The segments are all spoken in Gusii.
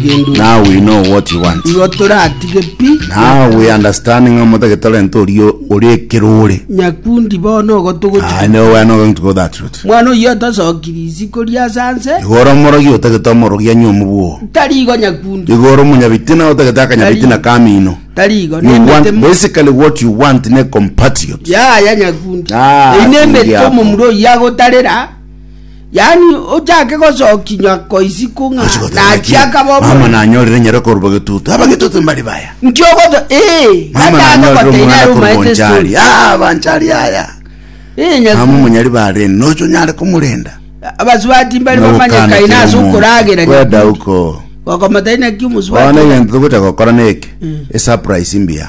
Now we know what you want. Igo toratige pi. Now we understand ng'a omotagete orente oria ore ekerore. Nyakundi bono ogo togochia. I know we are not going to go that route. Mwana oyio atosokiri isiko ri'asa nse. Igo ore omorogi otagete omorogi anywe omobwo. Tari igo nyakundi. Igo ore omonyabitina otagete akanyabitina ka amino. Tari igo. You Nembete want, mo. basically what you want ne compatriot. Yaya nyakundi. Ah, Ei nembete kundia ako. omomura oyio agotarera. Yaani ochake gosokinywa koisiku ng'a nachi akaba Mama omorembe. nanyorire nyare korwa getutu. Aba getutu mbari baya. Nki ogoto ee Mama gata nanyorire agogoteina omwana ere omaete akogonchari. story. Ah, abanchari aya. Ee Mama nyakuo. omonyari barene. Nocho nyare komorenda. Abasubati mbari bamanye kaina ase okoragera Kweda nyakundi. uko. Gokomoteina ki Bono omosubati? egento togocha gokora neke. Esurprise mbuya.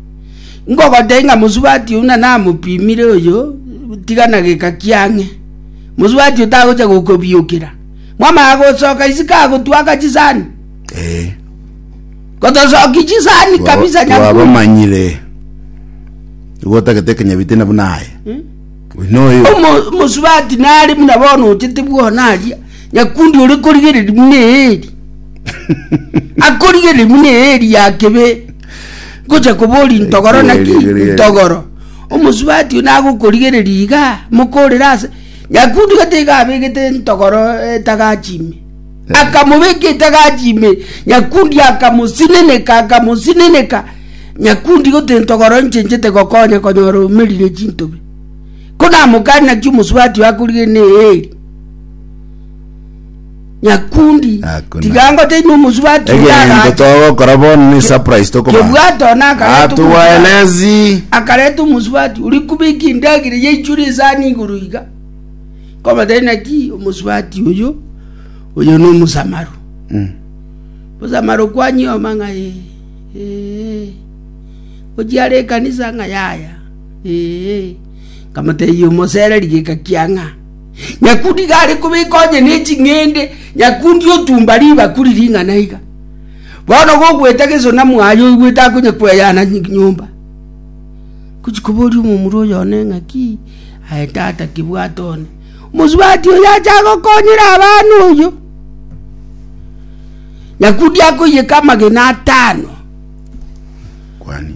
Ngogotebia ng'a mosubati oyio nana amopimire oyo, tiga na geka kiang'e, mosubati oyio tagochia gokobiokera. Mwamanya gosoka isiko agotwaka chisani? Eh. Gotosoki chisani kabisa nyakundi. twabamanyire igo otagete ekenyabite na buna aye oyio noyo Omo- Mosubati nare buna bono ochete bwona aria, nyakundi ore korigereria buna eeri. Akorigereria buna eeri ya kebe. Ngocha koboria intogoro naki? Intogoro. Omosubati oyio nagokorigereria iga, mokorere ase. Nyakundi gete iga abegete intogoro etagachi ime. Akamobeka etagachi ime, Nyakundi akamosineneka, akamosineneka. Nyakundi gotee intogoro inche inchete gokonya konyora omerire chintobe. Ko namokani naki omosubati oyio akorigereria na eeri. Nyakundi, Hakuna. tiga ngote inwe omosubati egento oyagacha. togokora bono ne surprise tokoba Kebwato Ah, nakareta omosubati. tuwaelezi akareta omosubati ori kubika endagera yaichure esani igoro iga kobata naki omosubati oyo oyo na omosamaro Mm. mosamaro kwanyioma ng'a "Eh, eh, ochiare ekanisa ng'a yaya Eh, nkamotebia omosereri geka kiang'a Nyakundi iga are kobeka onye ne ching'ende, nyakundi otumba ribakuri ring'ana iga. Bono gogoeta geso na mwaye oigwete akonya kweyana nyomba. Ngochi koboria omomura oyo one ng'a ki? Aye tata kibwate one. Omosubati oyo acha agokonyera abana oyo. Nyakundi akoiyeka amagena atano. Kwani.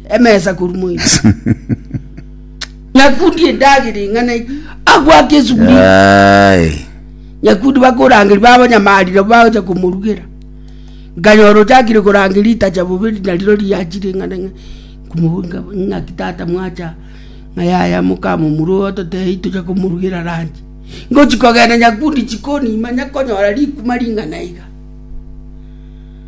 emesa korwa moibi nyakundi endagera eng'ana egi agwake esuguri Aye. nyakundi bakorangeria babanyamarire bagocha komorugera nkanyora ochakire korangeria ritacha bobe nariro riachire eng'ana ng'a nkomo- nka- ng'aki tata mwacha ng'a yaya mokamomura oyo totebie tocha komorugera ranchi ngochi kogenda nyakundi chikonima nyakonyora rikuma ring'ana iga